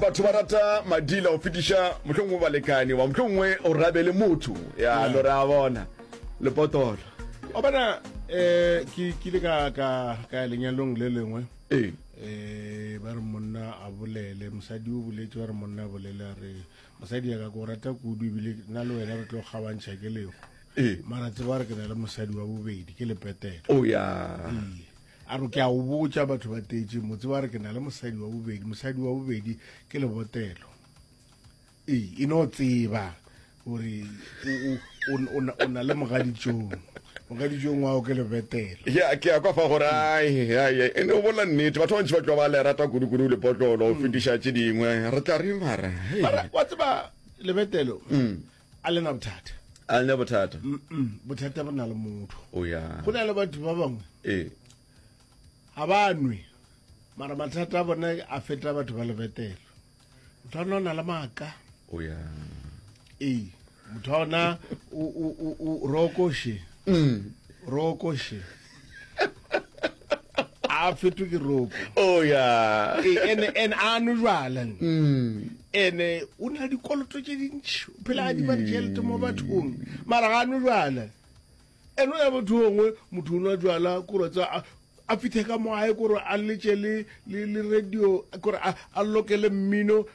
Batho ba rata madila go fetiša mohlongwe balekane wa mohlongwe o rabele motho ya lo re a bona lepotolo o bona eh ke kile ka ka ka ya lenyalong le lengwe ee eh ba re monna a bolele mosadi o boletse ba re monna a bolele a re mosadi ya ka ko rata kudu ebile nna le wena re tlo kgabantšha ke lego ee mara tseba gore ke na le mosadi wa bobedi ke lepetelo o ya Ee. a re ke a o botša batho ba tetse motse ba re ke na le mosadi wa bobedi mosadi wa bobedi ke lebotelo ee e no tseba gore o na le mogaditšong mogaditšong wao ke lebetelo ke ya kwa fa gore e ne o bola nnete batho bantši ba tlo ba le rata kudu-kudu lepotlolo go mm. fetiša tše dingwe re tla re mara wa tseba lebetelo mm. a lena bothata a lena bothata bothata bo na le motho oh, go na le batho ba bangwe ee ga ba nwe mara mathata a bone a feta batho ba lebetelo motho a nona le maaka oh, ee motho a ona rokoshe mm. rokoshe a fetwe ke roko oh ya ene ene a no jwala ene o na dikoloto tše dintši phela a di ba ditšhelete mo bathong mara ga no jwala ene o ya motho ongwe motho o nwa jwala kore tsa a- a fithe ka mo gae kore a letse le le le radio kore a a lokele mmino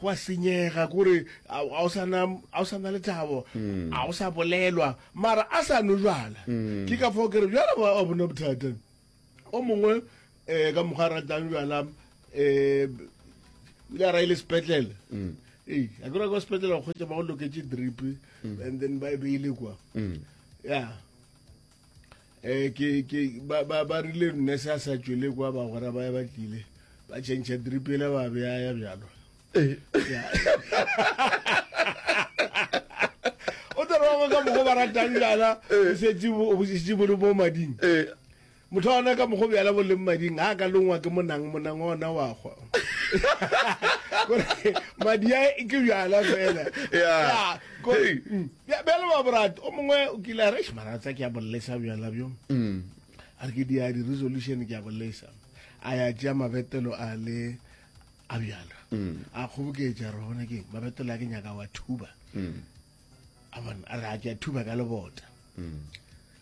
Go a senyega, kore a a o sa na a o sa na lethabo, a o sa bolelwa, mara a sa nwe jwala. Ke ka fao ke re jwale wa wa bona bothata. O mongwe um ka mokgwa a ratang jwala um o ile a ra ile sepetlele. Ee, a ke ra kwa sepetlele go kgwetša ba go loketše drip and then ba e beile kwa. Ya. Eh, ke ke ba ba ba rile nne se a sa tšwele kwa ba gora ba ya ba tlile ba change dripele ba be ya bjalo o tla ba ka mogo ba ratang jana o setse o busitse bo mo mading eh motho ona ka mogo bjala bo leng mading a ka longwa ke monang monang ona wa gwa madi a ke bjala fela ya Bjale ba borate o mongwe o kile a re eish mara tsa ke a bolesa bjala bjo a re ke di a di resolution ke a bolesa a ya tšea mabetelo a le a bjala a kgoboketša re bona ke mabetelo a ke nyaka wa thuba a bona a re a ke a thuba ka lebota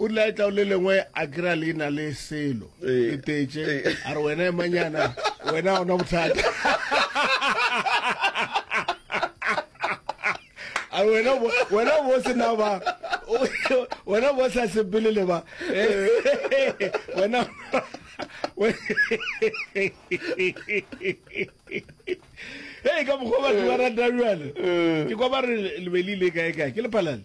O rile a etla o le lengwe a kry-a le na le selo Ee. le tetse Ee. a re wena emanyana wena ga ona bothata a re wena bo- wena bo sena ba wena bo sa sepele le ba wena hei ka mokgwa batho ba rata bjale ke kwa ba re le be le ile kae kae ke lephalale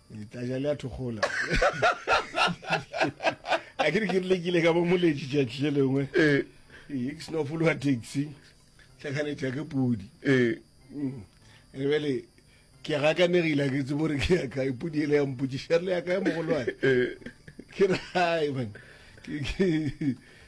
letlaja le a thokgola a ke re ke rile kile ka bo moletši tšatši le lengwe ee. ee, ke seno fologa taxi tlhakanetša ke podi ee. mm. re bele ke gakanegile ke tsebo re ke ya kae podi ele ya mpotšiša re le ya kae mogolwane ee. ke re hai man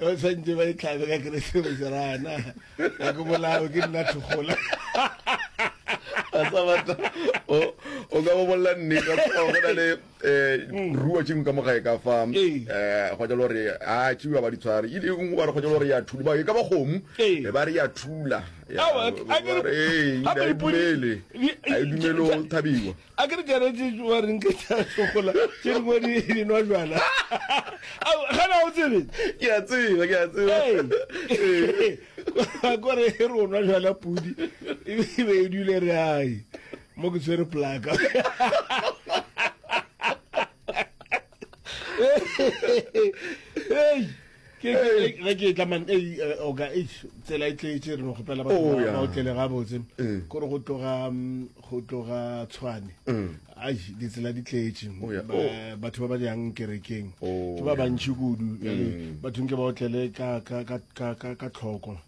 o tshwantse ba itlhabe ka keresemese rana a ke bolawe ke nna thokgola a sa batla o o ka bobolela nnete go na le um ruo tšengwe ka mogae ka fa um go jalo gore a tšiwa ba ditshware e ngwe ba re go jalo gore ya thula ba e ka ba kgomo e ba re ya thula ga e dumele o thabiwa A ke re Jarete wa reng ke tša tlogola tše dingwe di di nwa jwala. Au gana o tsebe. Ke a tseba ke a tseba. Hey. Ko re e re o nwa jwala pudi e be e dule re ai mo ke tshwere plaka. ge ke etla man eh, oka tsela e tletše re no kgopela batho oh, ba otlele gabotse eh. kore go tloga mm, go tloga tshwane eh. ai ditsela di tletše oh, oh. batho ba ba jang kerekeng ke ba bantšhi kudu bathong ke ba otlele ka tlhoko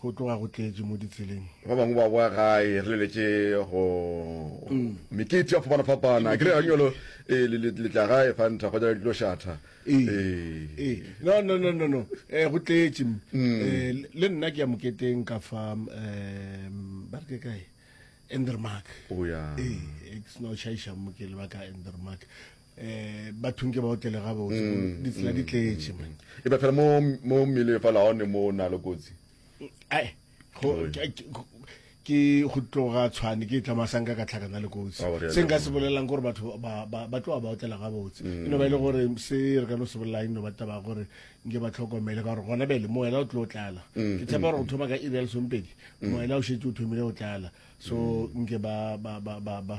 Go tloga go tletše mo ditseleng. Ba bangwe ba boa gae, re leletše go mekete ya fapana-fapana. Ke rega nyolo ee, le, le, le tla gae fanta kgotsa le tlo šatha. Ee, ee. No, no, no, no, no. Eh, go tletše. Mm. Eh, le nna ke ya moketeng ka fa, um, ba re ke kae? Endermark. O ya. Ee, ke seno šaiša mo ke leba ka Endermark. eh bathong ke ba otlele ga botse mm, ditsela di mm, tletse mm. e ba fela mo mo mmele fa la one mo na le kotsi ai go ke go tloga tshwane ke tla masang ka tlhakana le kotsi oh, se nka se bolelang gore batho ba ba tloga ba otlela ga botse e no ba ile gore se re ka no se bolelang e no ba taba gore nke ba tlhokomele ka gore gona bele moela o tlo tlala ke tshepa gore go thoma ka iri ya lesompedi moela o shetse o thomile go tlala so nke ba ba ba ba